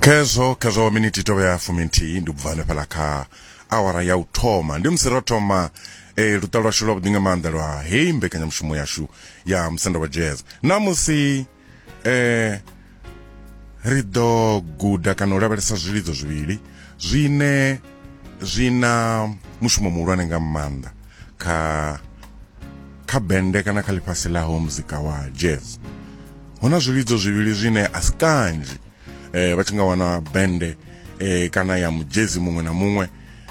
khezwo khezwo minithi tovha ya fumi nthihi ndi ubva hanefhala kha awara ya u thoma ndi musi ro thoma eh, luṱa lwashu lwa vhuḓi nga maanḓa lwa heyi mbekanyamushumo yashu ya musanda wa jazz namusi eh, ri ḓo guda kana u lavhelesa zwilidzo zwivhili zwine zwi na mushumo muhulwane nga maanḓa kha kha bende kana kha ḽifhasi ḽaho muzika wa jazz hu na zwivhidzo zwivhili zwine a si kanzhi eh, vha tshi nga wana bende eh, kana ya mujezi muṅwe na muṅwe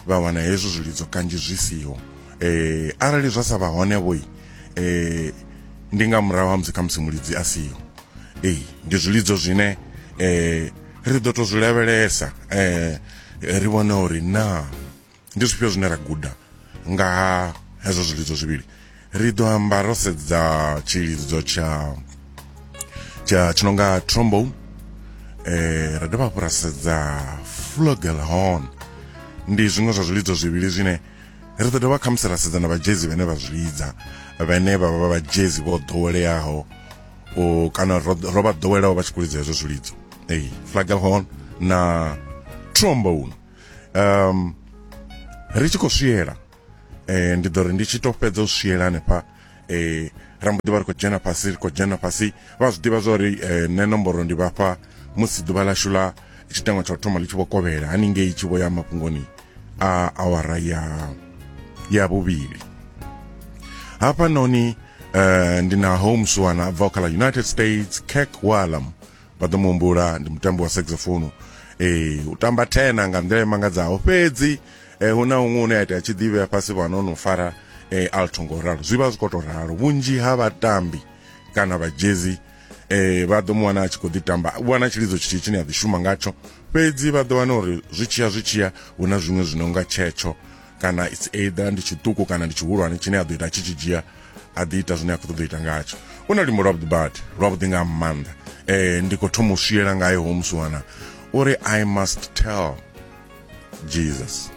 vha wana hezwo zwilidzo kanzhi zwi siho eh, arali zwa sa vha hone vhoi eh, ndi nga murahu ha musi khamusi mulidzi a siho ee ndi zwilidzo zwine eh, ri ḓo to zwi lavhelesa eh, ri vhone uri na ndi zwifhio zwine ra guda nga ha hezwo zwilidzo zwivhili ri ḓo amba ro sedza tshilidzo tsha tsha tshi nonga trombone eh ra dovha hafhu ra sedza flugelhorn ndi zwiṅwe zwa zwilidzo zwivhili zwine ri ḓo dovha khamusi ra sedza na vhajezi vhane vha zwi lidza vhane vha vha vhajezi vho ḓoweleaho o kana ro ro vha ḓowelaho vha tshi khou lidza hezwo zwilidzo ei flugelhorn na trombone um ri tshi khou swiela eh ndi ḓo ri ndi tshi to fhedza u swiela hanefha eh ra mbo ḓi vha ri khou dzhena fhasi ri khou dzhena fhasi vha zwi ḓivha zwa uri eh, nṋe nomboro ndi vhafha musi ḓuvha ḽashu ḽa tshiteṅwa tsha u thoma ḽi tshi vho kovhela haningei tshi vho ya mafhungoni a awara ya ya vhuvhili hafhanoni eh ndi na holmes wana a bvaho kha ḽa united states kirk wallam vha ḓo muhumbula ndi mutambi wa saxophone ee u tamba tena nga nḓila imangadzaho fhedzi eh, hu na huṅwe une a itea tshi ḓivhea fhasi fhano no fara eh, alto ngo ralo zwi vha zwi khou tou ralo vhunzhi ha vhatambi kana vhajezi eh, vha ḓo mu wana a tshi khou ḓi tamba u wana tshilidzo tshithihi tshine a ḓi shuma ngatsho fhedzi vha ḓo wana uri zwi tshiya zwi tshiya hu na zwiṅwe zwi no nga tshetsho kana its either ndi tshiṱuku kana ndi tshihulwane tshine a ḓo ita tshi tshi dzhia a ḓi ita zwine a khou ṱoḓa u ita ngatsho u na luimbo lwavhuḓi badi lwavhuḓi nga maanḓa um ndi khou thoma u swiela ngayo homusiwana uri i must tell jesus